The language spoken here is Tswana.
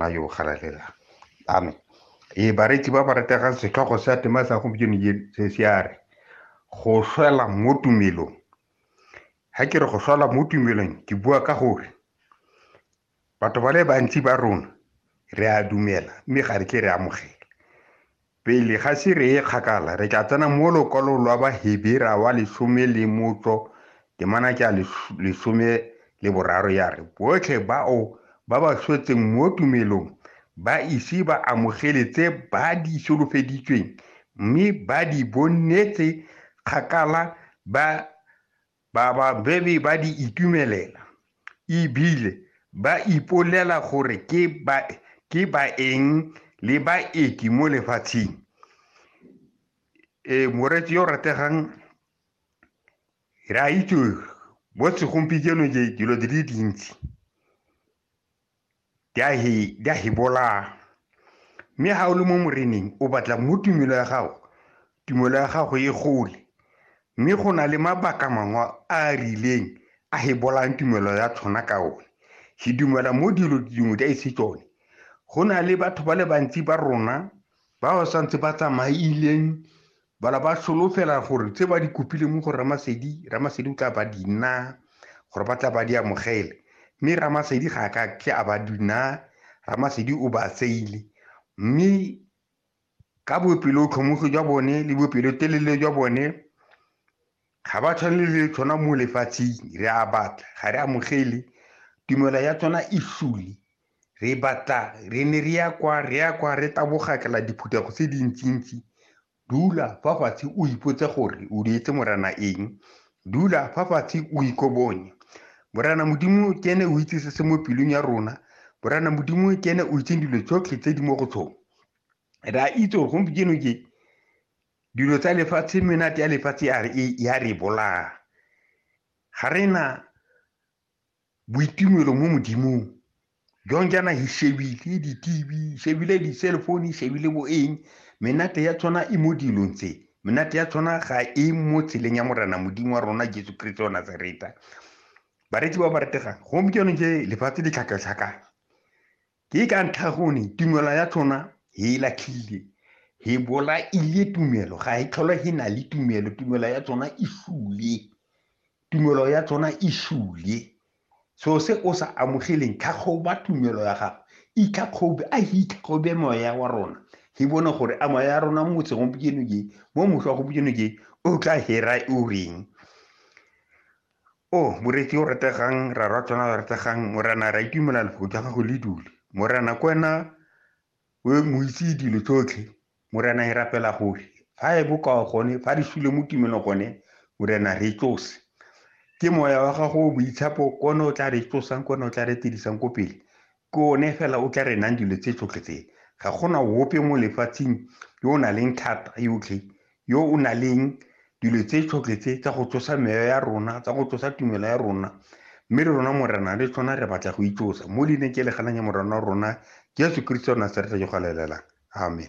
ba yo galalela amen ee bareki ba ba rategang setlhogo sa tema sa gompieno se se a re go swela mo tumelong ga ke re go swela mo tumelong ke bua ka gore batho ba le bantsi ba rona re a dumela mme ga re tle re amogela Pele ga se re ye kgakala, re tla tsena mo lokwalong lwa Bahebera wa lesome le motso temana ke a lesome le boraro ya re, Botlhe bao ba ba swetseng mo tumelong ba ise ba amogele tse ba di solofeditsweng mme ba di bonetse kgakala ba Bababemi ba di itumelela e bile ba ipolela gore ke baeng le baeti mo lefatsheng. Ee, moreetsi yo o rategang, re a itse mo segompieno dilo di le dintsi di a he di a he bolaya mme ga o le mo moreneng o batla mo tumelo ya gago tumelo ya gago e gole mme go na le mabaka mangwe a a rileng a he bolayang tumelo ya tshwana ka one ke dumela mo dilo dingwe di a ise tsone go na le batho ba le bantsi ba rona ba ba santse ba tsamaileng Bala ba solofela gore tse ba di kopileng mo go Ramasedi, Ramasedi o tla ba di naa, gore ba tla ba di amogele. Mme Ramasedi ga a ka ke a ba di naa, Ramasedi o ba tseile. Mme ka bopelotlhomogi jwa bone le bopelotelele jwa bone, Ga ba tshwane le tshwana mo lefatsheng re a batla ga re amogele tumelo ya tsona e sule re batla re ne re ya kwa re ya kwa re tabogakela diphuthego tse dintsintsi dula fa fatshe o ipotse gore o dietse morana eng dula fa fatshe o ikobonye morana modimo ke ene o itse se se mo pelong ya rona morana modimo ke ene o itseng dilo tsotlhe tse di mo go tsone re a itse gore gompieno ke dilo tsa lefatshe menate ya lefatshe ya re bolaya ga re na boitumelo mo modimong jong jaana hi shebile di-tv shebile di-cell phone shebile bo eng menate ya tshwana e mo dilong tse menate ya tshwana ga e mo tseleng ya morena modimo wa rona jesu kriste wa nazareta baretsi ba ba retegang gompieno je lefatshe le tlhakatlhakane Ke ka ntlha gone tumelo ya tlhona he e latlhile, he bolaile tumelo, ga e tlhole he na le tumelo, tumelo ya tsona e sule. Tumelo ya tsona e sule. So se o sa amogeleng, tlhagoba tumelo ya gago. Itlhagobe, a he itlhagobe moya wa rona. He bone gore a moya ya rona mo segompieno ke, mo motlho wa gompieno ke, o tla hera o reng. O, moreetsi yo o rategang, ra rwa tsona ba rategang, Morena, ra itumela lefoko jwa gago le dule. Morena, ke wena o moitse dilo tsotlhe. Morena, e rapela gore fa e bokao gone, fa re sule mo tumelong gone, Morena, re tsose. Ke moya wa gago o boitshepo, ke one o tla re tsosang, ke one o tla re tirisang ko pele. Ke one fela o tla re nang dilo tse tsotlhe tse. Ga go na ope mo lefatsheng yo o na leng thata yotlhe, yo o na leng dilo tse tsotlhe tse tsa go tsosa meyo ya rona, tsa go tsosa tumelo ya rona. Mme le rona Morena le tsona re batla go itsosa mo leineng ke le ganang ya Morena wa rona Jesu Keresete wa Nasareta yo galelela. Amen.